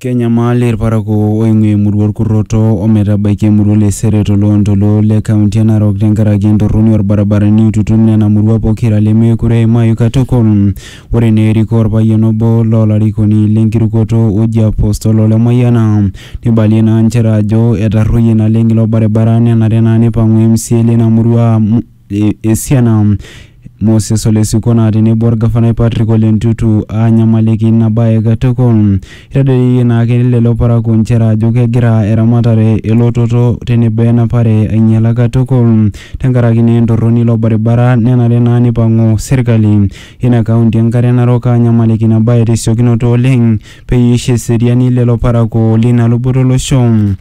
Kenyamal irparakuo oing'ua emurua orkurroto ometabaiki emurua le Sere toloontoluo le kaunti e Narok tenkaraki entorroni orbaribarani oitutum nena murua pokira lemeekure eimayu katukul. Ore naa erikoo orpayian obo loolarikoni lenkirukoto oji Apostle Ole Mayiana neibalie naa nchere ajo etarruoyie naleng ilo baribara nenare naa neipang'u MCA lina murua amu e- esiana Moses Ole Sikona tenebo olgafanai Patrick Ole Ntutu aanyamaliki ina bae katukul. Eitadedeyie naake lelo parakuo nchere ajo kegira eramatare, elototo tenebo enapare ainyala katukul tenkaraki naa entorroni ilo baribara nenare naa neipang'u serkali ina kaunti e Nkare Narok aanyamaliki ina bae tesiokinoto oleng peyie eisho eseriani lelo parakuo leina luboto olosho.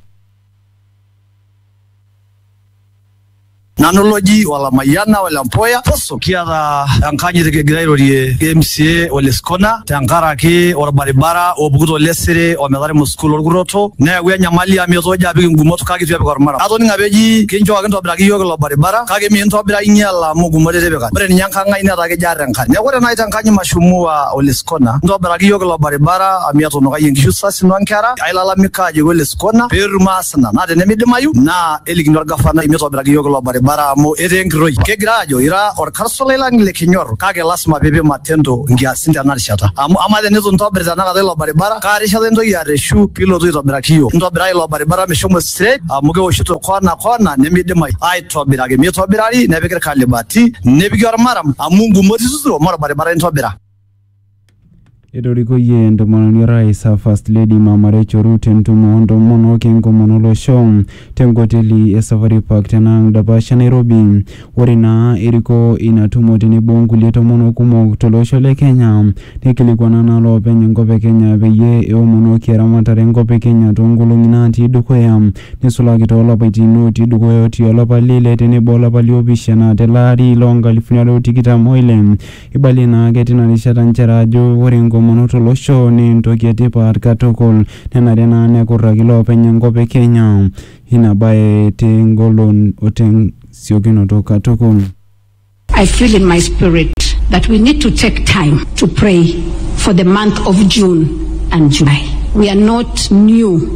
Nanu loji Walamayiana Ole Mpoya Poso. Kiata enkanyit kigira airorie MCA Ole Skona tenkaraki orbaribara opuku to Lesere ometaremo sukuul orkurroto neewua enyamali amu etoojo apik ingumot kake eitu epik ormaram. Atoning'o apa eji kinchooki intobiraki iyiook ilo baribara kake miintobira ainyiala amu ingumot itipika. Ore ninye enkang ai netaa kejo aar enkare. Neeku ore naai te nkanyi mashumuwa Ole Skona intobiraki iyiook ilo baribara amu etunukayie inkishu sasin o nkera ailalamika ajoki Ole kona petum maasina naa tenemidimayu naa elikini orgafanai mitobiraki iyiook ilo baribara amu etaa enkiroi kegira aajo ira orkarsolai lang le kinyor kake lasima piipik matendo nkiasin tena rishata amu amaa tenitu intobir tenakata ilo baribara kaa rishata intoki arreshu piilotu aitobiraki iyiook ntobirai ilo baribara meshomo straight amu kewoshito kona kona nemidimayu aitobiraki mitobirari nepiki irkalibati nepiki ormaram amu ingumot ituturo mee orbaribara intobira Etorikoyie entomononi orais a First Lady Mama Rachel Ruto entumo o ntomonok enkomono olosho te nkoteli e Safari Park tena ang dapash e Nairobi. Ore naa eriko ina tumo tenebo o nkulie tomonok kumok to losho le Kenya neikilikuana naa loopeny enkop e Kenya peyie eomonoki eramatare enkop e Kenya too nkolongi naatii dukuya neisulaki too lapaitin ootii dukuya otii olapa le ile tenebo olapa li opishana tele ari loo nkalifuni are o tikitam o ile. Eibalie naa ake tina rishata nchere ajo ore enkomono to losho naa entoki e tipat katukul nenare naa nekurraki loopeny enkop e Kenya ina bae te ngolon o te siokinoto katukul. I feel in my spirit that we need to take time to pray for the month of June and July. We are not new.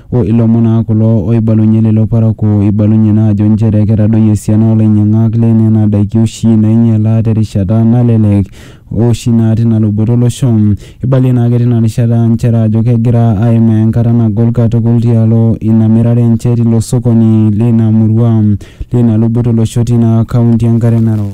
O ilomon naa kulo ooibalunye lelo parakuo oibalunye naa ajo nchere ketadoyie esiana oo lainyiang'ak le nena daiki oshi naainyiala te rishata nalelek o oshi naa tina luboto o losho. Eibalie naake tina rishata nchere ajo kegira aimaa enkata nagol katukul tialo ina mirare enche tilo sokoni leina murua leina luboto o losho teina kaunti e Nkare Narok.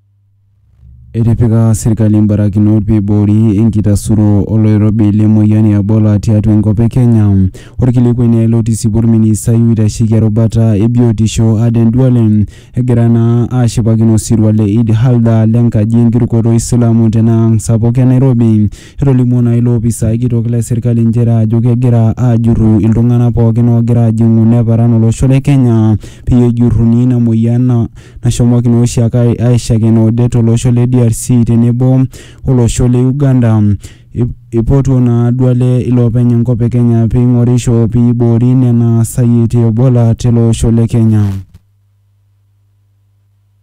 Etipika sirkali mbarakinot peiboori enkitasuro oloirobi le moyian e Ebola tiatua enkop e Kenya. Orkilikuai naa ilo otisipua orministai oitasheki erubata e biotisho Aden Duale egira naa ashipakino osirua le Eid Halda le nkaji enkirukoto o Isilamu tena ang sapuk e Nairobi. Etolimuo naa ilo opisai kitok le serkali nchere ajo kegira aajurru iltung'ana pookin oogira aajing'u neparan olosho le Kenya peyie ejurruni ina moyian nashomoki naa oshiake aishakena odet to losho le DRC tenebo o losho le Uganda. Eipotuo naa Duale iloopeny enkop e Kenya pee eing'orisho pee eiboori nena sayiet e Ebola tele osho le Kenya.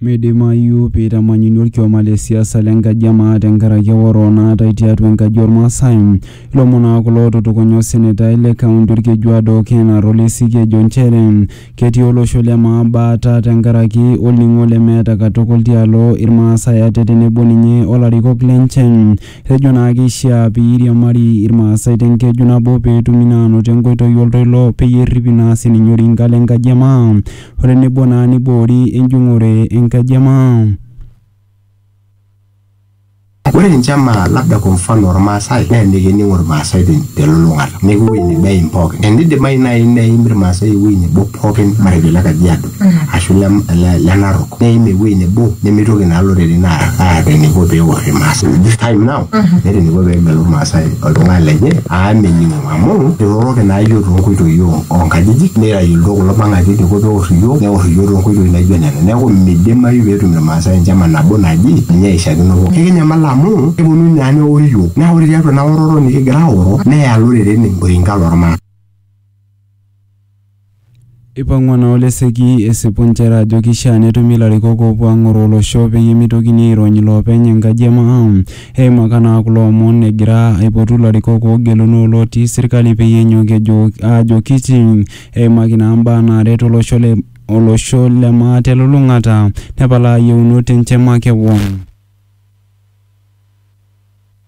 Meidimayu pee eitamanyuni olkioma le siasa le nkaji e maa tenkaraki eoro naatae tiatua enkaji oo Lmaasai. Ilomon aa kulo ootutukunya osenetai le kaunti Olkejuado Ken Arolesik ejo nchere ketii olosho le maa baata tenkaraki olning'o lemeeta katukul tialo Ilmaasai ate tenebo ninye o larikok lenche. Etejo naa keishiaa pee eiriamari Ilmaasai te nkeju nabo pee etumi naa aanoto enkoitoi o ltoilo peyie erripi naa sininye orinka le nkaji e maa. otenebo naa neiboori enjung'ore enkaji e maa. Ore ninche maa labda kwa mfano Ilmaasai naa emikining'u Ilmaasai telulung'ata neeku ewueji nebo eim pookin. Eneidimayu naaji neim Ilmaasai ewueji nebo pookin matejo le Kajiado ashu le Narok neim ewueji nebo nemeitoki naa iloreren aata eneiko pee eor Ilmaasai this time now meeta eneiko pee egelu Ilmaasai oltung'ani lenye amu mening'o. amu iroroki naa iyiook toonkoitoi oo- oonkajijik neitayu iltoo kulo pang'aki eidiko peor iyiook neor iyiook toonkoitoi naijo nena neeku midimayu peetum irmaasai enchama nabo naji ninye eishakino pooki ekinyamal amu keponu naa neor iyiook naa ore tiatua ina oroto nikigira aoro neya iloreren oinka lormaasai. Eipang'ua naa Oleseki esipu inchere ajo keishaa netumi ilarikok oopuo aang'oroo olosho peyie meitokini airony iloopeny enkaji e maa. Eimaka naa kulo omon egira aipotu ilarikok oogeluno o lootii serkali peyie enyok ejo aajokichi eimaki naa imbaa naaret olosho le olosho le maa telulung'ata nepalaa iyieunot enche makewon.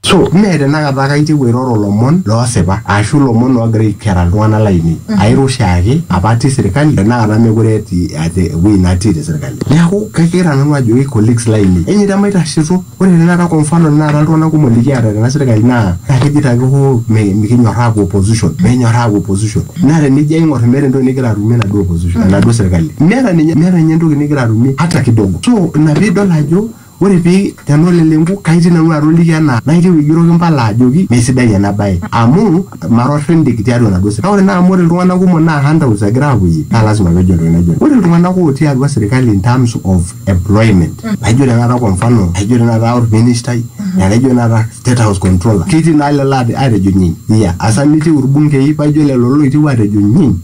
So, mee tenakata ake aitieu airoro ilomon loosipa aashu ilomon oogira aikera iltung'ana laainei. Airo oshiake apa atii serkali tenakata meekure etii ate ewueji natii te serkali. Neaku, kagira nanu ajoki colleagues laainei enyeita maitasheito. Ore tenakata kwa mfano tenakata iltung'ana kumok likiata tena serkali naa kejoito ake hoo mikinyorraa aapuo opposition, mikinyorraa aapuo opposition. Naa tenijo aing'or meeta entoki nigira atumie enaduo opposition, enaduo serkali. Meeta ninye entoki nigira atumie hata kidogo. So, ina piidol ajo. Ore pii tenoleleng'u kaitii nanu atoliki ena naitieu aigeroki mpala ajoki mee sidai ena bae amu mara orrindik tiatua enaduo sirkali. Kake ore naa amu ore iltung'ana kumok naa handouts egira aapuoyie naa lasima peejo entoki naijo ina. Ore iltung'ana ootii atua sirkali in terms of employment laijo tenakata kwa mfano laijo tenakata orministai laijo tenakata state house controller ketii naa lelo aatejo nyiin. Iya asa mitiu irbungei paijo lelo looitieu aatejo nyiin.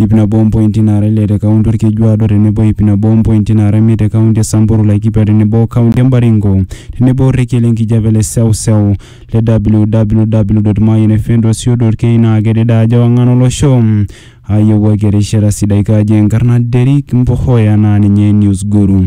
iip nabo ompointi naara ile te kaunti Olkejuado tenebo iip nabo ompointi naara imiet te kaunti e Samburu, Laikipia tenebo o kaunti e Baringo tenebo orrekie le nkijape le seuseu le www.mayianfm.co.ke naa kedede ajo ewang'an olosho aayewuaki erishata sidai kaji enkarna Derrick Mbohoya naa ninye Newsguru.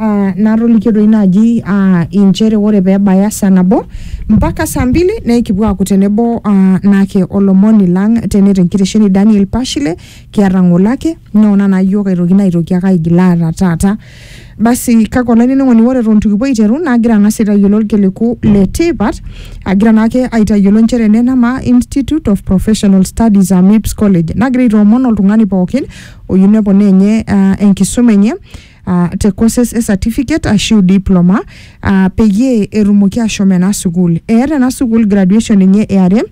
uh, natolikio doi naaji uh, inchere ore pee ebaya saa nabo mpaka saa mbili naa ikipuo aaku tenebo uh, naake olomoni lang tene tenkitesheni Daniel Pashile kiata ng'ole ake noona naa yiok aitoki naitoki ake aigil aata taata basi kake olainining'oni ore eton itu kipuo aiteru naagira ang'as aitayiolo irkiliku le tipat agira naake aitayiolo inchere ene nama Institute of Professional Studies aa MIPS College nagira aitoomon oltung'ani pookin oyieu neponaa enye uh, enkisuma enye uh, te courses e certificate ashu diploma uh, peyie etumoki ashom ena sukuul eeta ena sukuul graduation enye eare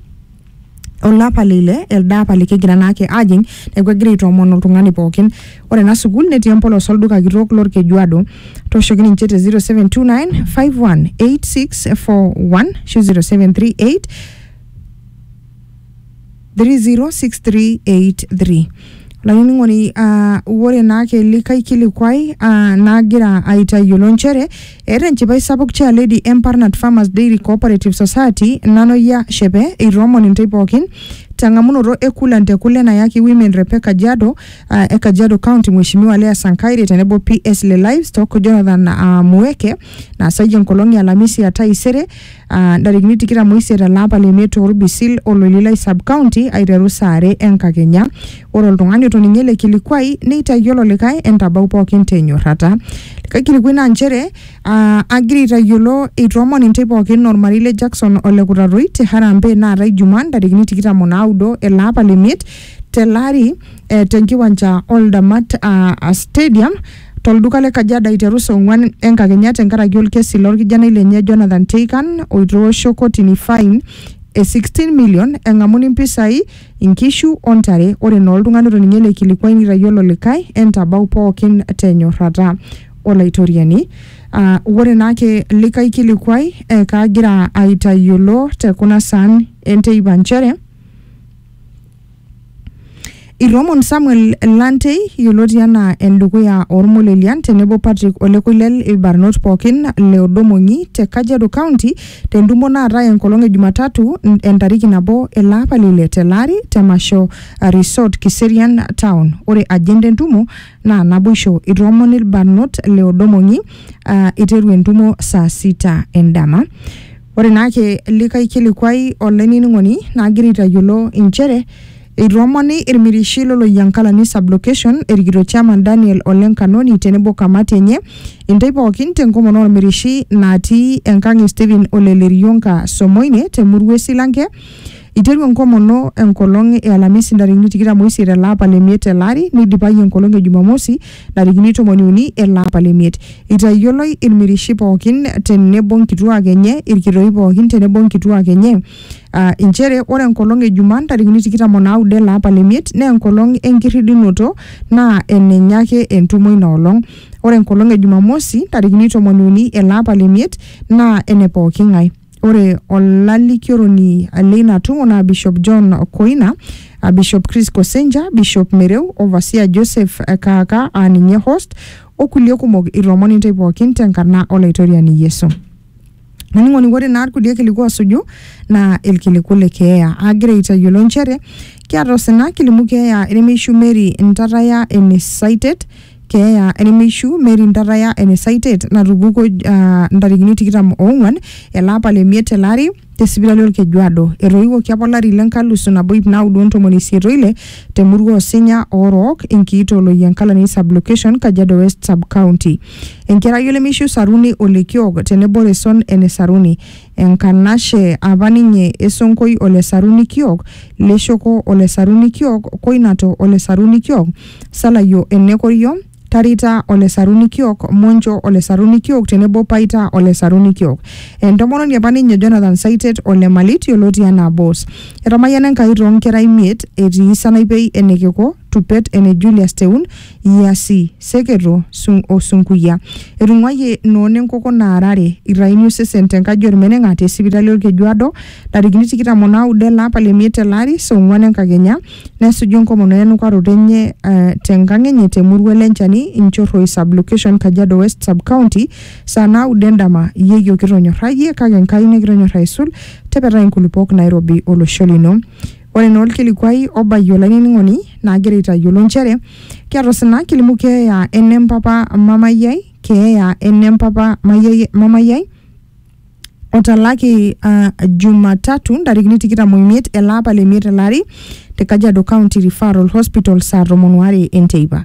olapa leile elde apa likigira naake ajing neeku egira aitoomon oltung'ani pookin ore ena sukuul netii empolos olduka kitok lorkejuado tooshoki ninche te 0729 518641 ashu 0738 30683 laining'oni uh, ore naa kelikae kilikuai uh, nagira aitayiolo nchere eeta enchipai sapuk chair lady Embarnat Farmers Dairy Cooperative Society nanoyia shepe eitoomon intae pookin teng'amunoto e kulan te kule nayaki women rep e Kajiado uh, e Kajiado County Mheshimiwa Leah Sankaire tenebo PS le Livestock Jonathan uh, Mueke naasayie enkolong e Alamisi ya taisere ah, ntarikini tikitam oisiet ele apa le miet Orbisil Ololilai sub county aiteru saa are enkakenya. Ore oltung'ani otoning'o ele kilikuai neitayiolo likae entabau pookin tenyorrata. Likae kilikuai naa nchere ah, agira aitayiolo eitoomon intae pookin ormarei le Jackson ole Kutatoi te Harambee naata Ijumaa ntarikini tikitam o naudo ele apa le miet tele ari eh, tenkiwanja Oldamat ah, ah, stadium tolduka le Kajiado aiteru saa onguan enkakenya tenkaraki olkesi lo lkijanai lenye Jonathan Teikan oitoosho kotini fain e 16 million engamuni mpisai, inkishu o ntare. Ore naa oltungani otoning'ie ele kilikuai neitayiolo olikae entabau pookin te nyorrata. Olaitoriani. Aa ore naa ake likae kilikuai ee kaagira aitayiolo te kuna saan e nteipa nchere, Iromon Samuel Lantei yioloti anaa endukuya ormolelian tenebo Patrick Ole Koilel irbarnot pookin le Odomong'i te Kajiado County tentumo naatae enkolong e Jumatatu n- entariki nabo ele apa le ile tele ari te Masho Resort Kiserian Town. Ore agenda entumo naa naboisho. Itoomon irbarnot le Odomong'i aa iteru entumo saa sita endama. Ore naake likae kilikuai olainining'oni naagira aitayiolo inchere eitoomoni ilmirishi lo Loyiankalani Sublocation erikito Chairman Daniel Ole Nkanoni tenebo kamati enye intay pookin tenkomono olmirishi natii enkang e Stephen Ole Lerionka Somoine te murua e Silanke Eiteru enkomono enkolong e Alamisi ntarikini tikitam oisiet ele apa le miet tele ari neidipayu enkolong e Jumamosi ntarikini tomoni uni ele apa le miet. Eitayioloi ilmirishi pooki te nebo nkituak enye, ilkitoi pooki te nebo nkituak enye aa inchere ore enkolong e Jumaa ntarikini tikitam o naudo ele apa le miet naa enkolong e nkirridunoto naa enenye ake entumo ina olong. Ore enkolong e Jumamosi ntarikini tomoni uni ele apa le miet naa ene pooki ng'ae. Ore olalikioroni leina tumo naa Bishop John Koina, a Bishop Chris Kosenja, Bishop Mereu, Overseer Joseph Kaaka aa ninye host, o kulie kumok ilomon intae pookin tenkarna Olaitoriani Yesu. Olainining'oni ore naa ilkulie kiliku oosuju naa ilkiliku le keeya. Aagira aitayiolo nchere kiata osina kilimu keeya enemeishu Mary Ntataya ene Saitet keeya enemeishu Mary Ntaraya ene Saitet natupukuo ah, ntarikini tikitam oong'uan ele apa le miet tele ari te sipitali Olkejuado. Etoiwuoki apa olari le nkalusu nabo ip naudo o ntomoni isiet oile te murua Osinya Oorook, Enkiito Loyiankalani Sublocation, Kajiado West Subcounty. Enkerai olemeishu Saruni Olekiok tenebo Reson ene Saruni. Enkanashe apa ninye e Sonkoi o Lesaruni kiok, Leshoko o Lesaruni kiok, Koinato o Lesaruni kiok, Salayo e Nekorio, Tarita o Lesaruni kiok, Moncho o Lesaruni kiok tenebo Paita o Lesaruni kiok. Entomononi apa ninye Jonathan Saitet o Lemalit yioloti anaa Boss. Etamayiana Enkai too nkera imiet etii Sanaipei ene Keko, Tupet ene Julius Teun, Iasi, Seketo, Sung o Sunkuya. Etung'uayie noona enkoko naarare irraini osesen te nkaji olmeneng'a te sipitali Olkejuado ntarikini tikitam o naudo ele apa le miet tele ari saa ong'uan enkakenya nesuju enkomono e nukaroto enye uh, te nkang enye te murua Lenchani, Inchorroi Sub-location, Kajiado West Sub-county saa naudo endama. Yeyio kitonyorrayie kake Nkai nikitonyorr aisul, tepetai nkulupuok nairobi olosho lino. Ore naa olkilikuai obayie olainining'oni naagira aitayiolo nchere kiata osina kilimu keeya ene mpapa mamayi ai, keeya ene mpapa mayiai- mamayi ai otalaki ah, Jumatatu ntarikini tikitam oimiet ele apa le miet ele ari te Kajiado County Referral Hospital saa tomon oare enteipa.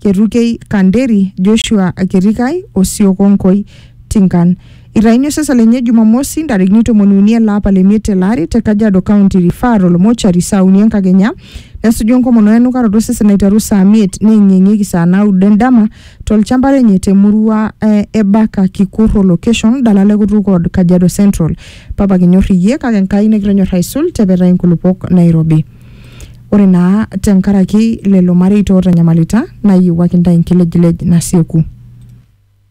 Ketukei Kanderi, Joshua Ketikai o Siokonkoi Tinkan. Itaini osesa lenye Jumamosi ntarikini tomoni uni ele apa le miet tele ari te Kajiado County Referral Mortuary saa uni enkakenya nesuju enkomono o enukaroto osesen aiteru saa miet neeng'ieng'ieki saa naudo endama tolchamba lenye te murua e Ebaka Kikurro location dalala e Kutuk Ward Kajiado Central. Papa kinyor iyie kake Enkai nikitonyor aisul tepetai nkulupuok nairobi. Ore naa tenkaraki lelo mareita ootanyamalita, naayiewuaki intae enkilejilej nasieku.